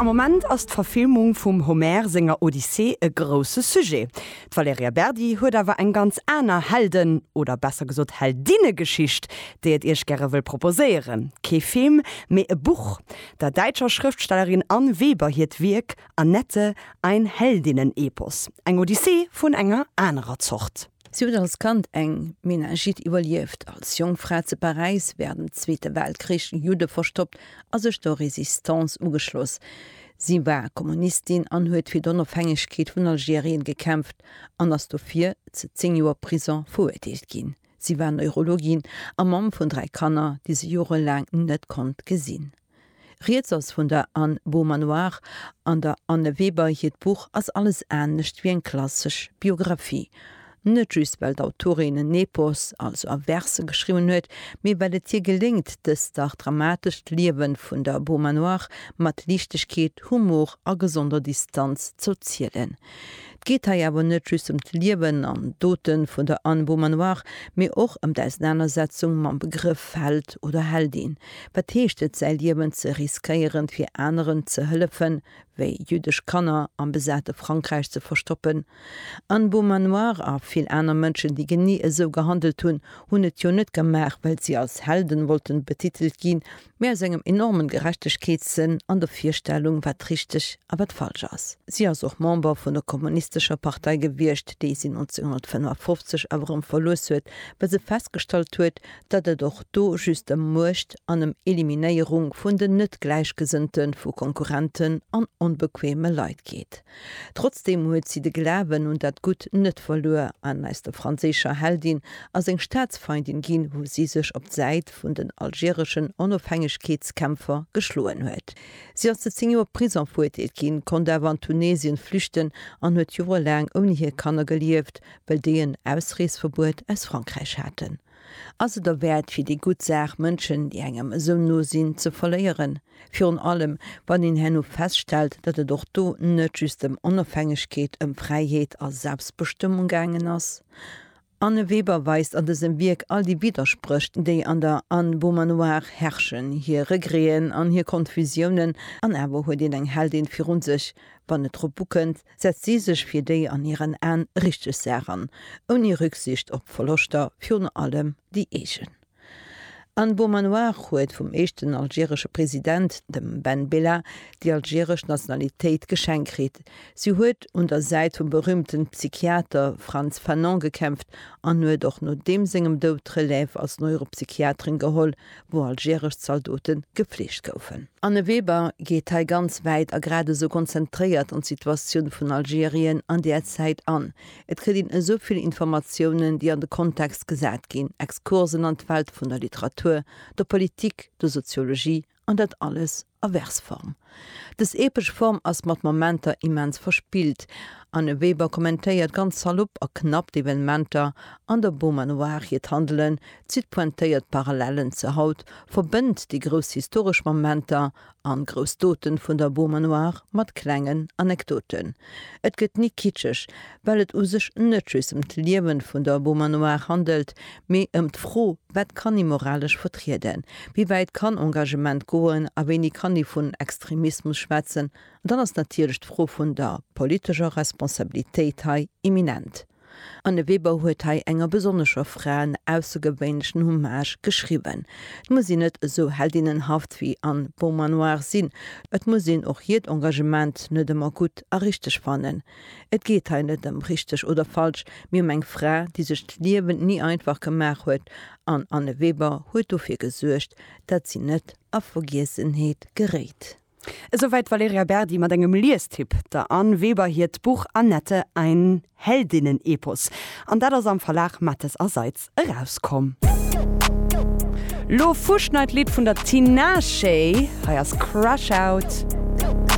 Am Moment ass d'Verfilmung vum Homer senger Odyssee e grousse Sujet. D'Valerija Berdi huet awer eng ganz aner Helden oder besser gesot Heldinnegeschicht, déi et Iech gäre wëll proposéieren, kee Film, mee e Buch, der däitscher Schrëftstellerin Anne Weber hiert Wierk Annette, ein Heldinnen-Epos, eng Odyssee vun enger anerer Zort. Si huet als Kand eng Meningite iwwerlieft, als jonk Fra zu Paräis wärend dem Zweete Weltkrich Judde verstoppt a sech der Résistance ugeschloss. Si war Kommunistin an huet fir d'Onofhängegkeet vun Algerien gekämpft an ass dofir zu zéng Joer Prison veruerteelt ginn. Si war Neurologin a Mamm vun dräi Kanner, déi se jorelaang net konnt gesinn. Rieds ass vun der Anne Beaumanoir an der Anne Weber. Hiert Buch ass alles anescht wéi eng klassesch Biographie. Net just well d'Autorin en Epos, also a Verse geschriwwen huet, mee well et hir geléngt, dëst dach dramatescht Liewe vun der Beaumanoir mat Liichtegkeet, Humor a gesonder Distanz z'erzielen. Et geet hei awer net just ëm d'Liewen an d'Dote vun der Anne Beaumanoir, mee och ëm d'Ausenanersetzung mam Begrëff Held oder Heldin. Wat heescht et, säi Liewen ze riskéieren, fir aneren ze hëllefen, wéi jüddesch Kanner am besate Frankräich ze verstoppen? Anne Beaumanoir a vill aner Mënschen, déi genee esou gehandelt hunn, hunn et jo net gemaach, well si als Helden wollten betitelt ginn, mä aus engem enormen Gerechtegkeetssënn an der Virstellung, wat richteg a wat falsch ass. Si ass och Member vun der kommunistescher Partei gewiescht, déi si 1955 awer erëm verluess huet, well se festgestallt huet, datt et och do just ëm Muecht an ëm Eliminéierung vun den Net-Gläichgesënnte vu Konkurrenten an onbequeme Leit geet. Trotzdeem huet si de Glawen un dat Gutt net verluer an aus der franséischer Heldin ass eng Staatsfeindin ginn, wou si sech op d'Säit, Haaptstad vun den algereschen Onofhängegkeetskämpfer geschloen huet. Si ass zu 10 Joer Prison verurteelt ginn, konnt awer an Tunesien flüchten an huet joerelaang ouni hir Kanner gelieft, well déi en Ausreesverbuet aus Frankräich haten. Ass et derwäert fir déi gutt Saach Mënschen, déi engem esou no sinn, ze verléieren? Virun allem, wann een herno feststellt, datt et och do net just ëm Onofhängegkeet, ëm Fräiheet a Selbstbestëmmung gaangen ass? Anne Weber weist an dësem Wierk all déi Widdersprécht, déi an der Anne Beaumanoir herrschen, hir Regreten an hir Konfusiounen, an awer huet een eng Heldin virun sech. Wann et drop ukënnt, setzt si sech fir déi an hiren Aen richteg Saach an, ouni Rücksicht op Verloschter, virun allem déi eegen. An Beaumanoir huet vum éischten algeresche President, dem Ben Bella, déi algeresch Nationalitéit geschenkt kritt. Si huet un der Säit vum berühmten Psychiater Frantz Fanon gekämpft an huet och no deem sengem Doud d'Relève als Neuropsychiaterin geholl, wou algeresch Zaldoten gefleegt goufen. Anne Weber geet hei ganz wäit a grad esou konzentréiert an d'Situatioun vun Algerien an där Zäit an. Et kritt een esou vill Informatiounen, déi an de Kontext gesat ginn, Exkursen an d'Welt vun der Literatur, der Politik, der Soziologie, an dat alles a Versform. Dës epesch Form ass mat Momenter immens verspillt, an de Weber kommentéiert ganz salopp a knapp d'Evenementer an der Beaumanoir, hiert Handelen zitt pointéiert Parallellen zur Haut, verbënnt déi grouss historesch Momenter An grouss Doten vun der Beaumanoire mat klengen Anekdoten. Et gëtt ni kitscheg, well et u sech net just ëm d'Liewen vun der Beaumanoire handelt, mee ëm d'Fro, wat kann ee moralesch vertrieden, wéi wäit kann Engagement goen a wéini kann ee vun Extremismus schwätzen. An dann ass natierlech d'Fro vun der politescher Responsabilitéit hei imminent. An de Weber huet hei enger besonnescher Fra en aussegewéinlechen Hommage geschriwwen. Et muss een net esou heldinnenhaft wéi an Beaumanoir sinn, et muss een och hiert Engagement net ëmmer gutt a richteg fannen. Et geet hei net ëm richteg oder falsch, mee ëm eng Fra, déi sech d'Liewen ni einfach gemaach huet, an Anne Weber huet dofir gesuergt, dat si net a Vergiessenheet geréit. Esouwäit d'Valerija Berdi mat engem Liestipp. Der Anne Weber hiert Buch Annette, ein Heldinnen-Epos. An dat ass am Verlag Matthes a Seitz erauskomm. Lo Fuschneid Lidd vun der Tinashe, hei ass Crash Out.